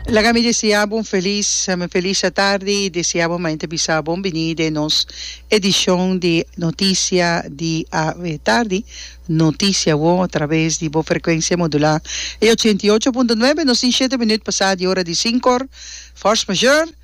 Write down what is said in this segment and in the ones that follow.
Laga mi deseá bo un felis felis atardi i deseá bo mañana ta bisa bon biní den nos edishon di Notisia di Atardi, Notisia Awor, a traves di bo frekuensia modulá e ochenta i ocho punto nuebe. Nos tin shete minüt pasá di ora di sinkor, fòrs major.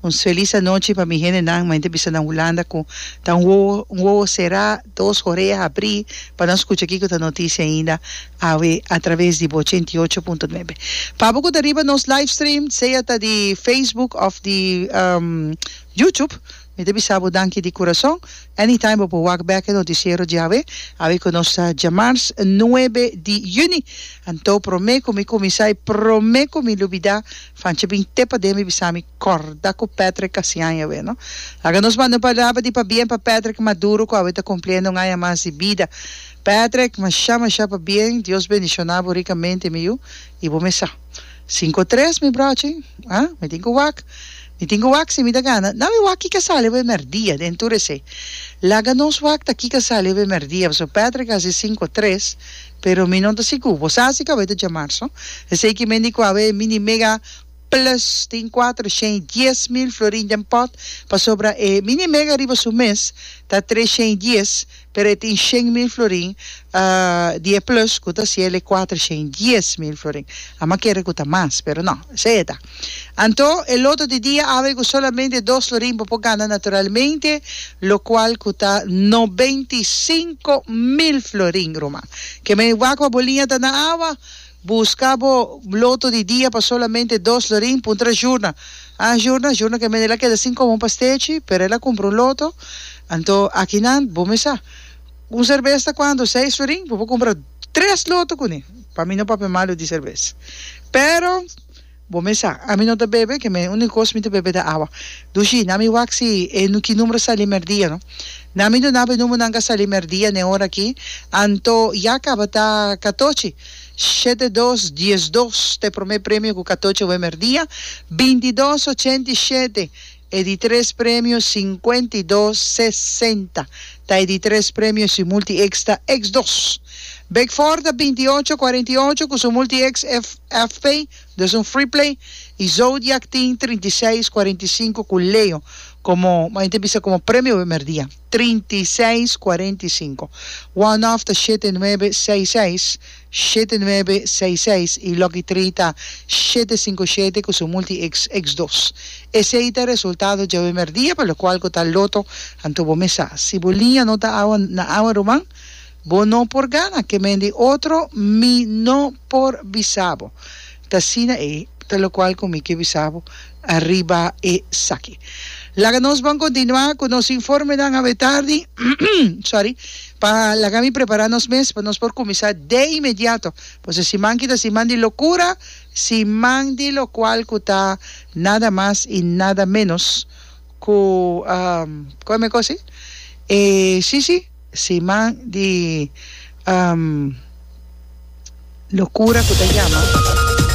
Un felis anochi pa mi hendenan, main ta bisa na Hulanda ku ta un wowo un wowo será, dos horeha abrí pa nan skucha kiko ta notisia ainda awe atraves di ochenta i ocho punto nuebe. Pa bo ku ta riba nos livestream, sea ta di Facebook òf di YouTube, Mi ta bisa bo danki di kurason. Anytime bo por wak bek e notisiero djawe, awe ku nos ta djamars nuebe di yüni. Anto prome ku mi kuminsá i prome ku mi lubidá, Fanchi bin te paden mi bisa mi, Kòrda ku Patrick Kasian i awe no. Laga nos manda un palabra di pabien pa Patrick Maduro ku awe ta kumpliendo un aña mas di bida. Patrick, mashá mashá pabien, Dios bendishoná bo rikamente mi yu, i bo mesa. Cinco tres mi brochi ah mi tin cu wak mi tin cu wak si mi ta gana na mi wak kica sali bo e merdia den tur ese laga nos wak ta kica sali bo e merdia pasobra Patrick a haci cinco tres pero mi no ta sigur bo sa si cu awor ta jamar so esey ki mendi cu awor e mini mega plus tin cuatro shen y dies mil florin den pot pasobra e mini mega riba su mes ta tres shen y dies Pero e tin shen mil florin di e plus ku ta siel e kuatroshen dies mil florin. Amba kere ku ta mas, pero no, esei e ta. Anto e loto di dia awe ku solamente dos florin bo por gana naturalmente, lokual ku ta nobenta i sinku mil florin, ruman. Ke men wak pa bo liña ta na awa. Buska bo bloto di dia pa solamente dos lorin puntra Jurna. Ah Jurna, Jurna ke mende el a keda sin komo pa stechi, pero el a kumpra un loto. Anto akinan bo mi sa un serbes ta kuantu? Seis lorin? Bo por kumpra tres loto kuné. Pa mi no papia malu di serbes, pero. Bo mes sa, ami no ta bebe, ke me único kos mi ta bebe ta awa. Dushi, na mi wak si e ki numero sali merdia, no. Na mi duna bo e numero nan ka sali merdia n'e ora aki, anto ya kaba ta katochi, shete dos, diesdos ta e prome premio ku katochi awe merdia, bintidos, ochenta i shete. E di tres premio sinkuenta i dos sesenta ta e di tres premio si multi X ta X dos. Big Four ta binti i ocho kuarenta i ocho ku su multi X F F P dus un free play i Zodiak tin trinta i seis kuarenta i sinku ku Leo komo man yo ta bisa komo premio primer dia trinta i seis kuarenta i sinku. One off ta shete nuebe seis seis. shete nuebe seis seis i Lucky Trita shete sinku shete ku su multi X X dos. Esei ta resultado djawe mèrdia pa lokual ku ta loto anto bo mesa. Si bo liña no ta awa na awa ruman bo no por gana. Ke mendi otro mi no por bisa bo. Ta asina ei, ta lokual ku mi ke bisa bo ariba esaki. Laga nos bon kontinuá ku nos informenan awe tardi, sorry, pa laga mi prepará nos mes pa nos por kuminsá de inmediato, pasobra siman ki ta siman di lokura, siman di lokual ku ta nada mas i nada ménos ku, kòmen kos ei? E, sí, sí. Siman di locura cu ta yama.